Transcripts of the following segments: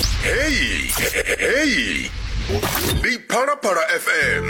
Heyi heyi ndi phalaphala fm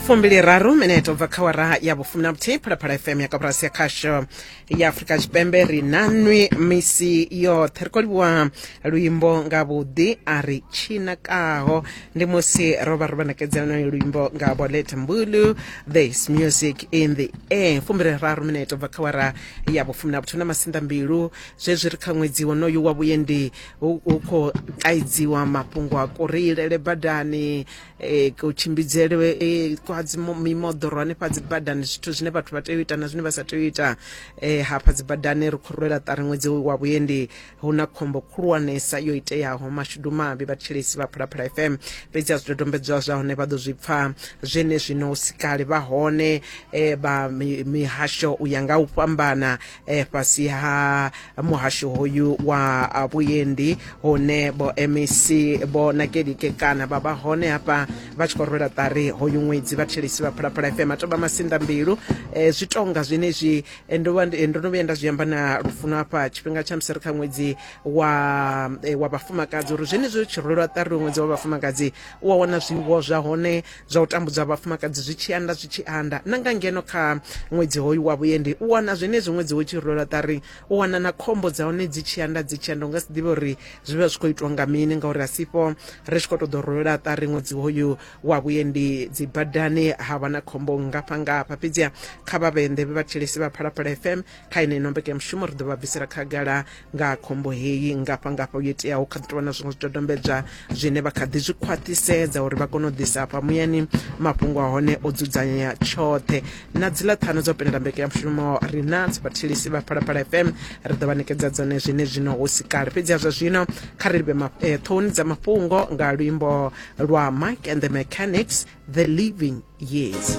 fumbili raru minete ubva kha wara ya vhufumi na vhuthihi phalaphala fm ya kaburasi ya khasho ya afurika tshipembe ri na nwi misi yoṱhe ri khou livhuwa luimbo nga vhuḓi a ri tshinakaho ndi musi ro vha ro vha ṋekedza lwonoyo luimbo nga bolet mbulu this music in the air fumbili raru minete ubva kha wara ya vhufumi na vhuthihi na masinḓa mbilu zwezwi ri kha ṅwedzi wonoyu wa vhuendi hu khou kaidziwa mafhungo a kureilele badani e, kutshimbidzelwe e, kwa mimoḓoro hanefha dzi badani zwithu zwine vhathu vha tea u ita na zwine vha sa tea u ita e, hafha dzi badani ri khou rwela ṱari ṅwedzi wa vhuendi hu na khombo khulwanesa yo iteaho mashudu mavhi vhathetshelesi vha phalaphala fm fhedzi a zwidodombedzwa zwa hone vha ḓo zwi pfa zwene zwino sikale vha hone vha mihasho u ya nga u fhambana eh, fhasi ha muhasho hoyu wa ah, vhuendi hune vho mec vho nakelike kana vha vha hone hafha vha tshi khou rwela ṱari hoyu ṅwedzi vhathelisi vha phalaphala fm atomba masinḓa mbilu eh, zwi tonga zwenezwi eh, ndo vha ndi- eh, ndo no vhuya nda zwi amba na lufuno hafha tshifhinga tsha musi ri kha ṅwedzi wa eh, wa vhafumakadzi uri zwenezwi ri tshi rwelwa ṱari ṅwedzi wa vhafumakadzi u a wana zwiwo zwa hone zwa u tambudza vhafumakadzi zwi tshi anda zwi tshi anda na nga ngeno kha ṅwedzi hoyu wa vhuendi u wana zwenezwi ṅwedzi wo tshi rwela ṱari u wana na khombo dza hone dzi tshi anda dzi tshi anda u nga si ḓivhe uri zwi vha zwi khou itwa nga mini ngauri a sifho ri tshi khou tou ḓo rwela ṱari ṅwedzi hoyu wa vhuendi dzi badani ha vha na khombo ngafha ngafha fhedziha kha vha vhende vhe vha thetshelesi vha phalaphala fm kha yeneino mbekanyamushumo ri ḓo vha bvisela khagala nga ha khombo heyi ngafhangafha yo iteaho kha ḓi tou vha na zwiṅwe zwidodombedzwa zwine vha kha ḓi zwi khwaṱhisedza uri vha kone u ḓisa hafha muyani mafhungo a hone o dzudzanyea tshoṱhe na dziḽa ṱhanu dzo penela mbekanyamushumo ri na dzibathelisi vha phalaphala fm ri ḓo vha ṋekedza dzone zwine zwino hu si kale fhedzi ha zwa zwino kha ri livhe eh, ṱhohoni dza mafhungo nga luimbo lwa mike and the mechanics the living years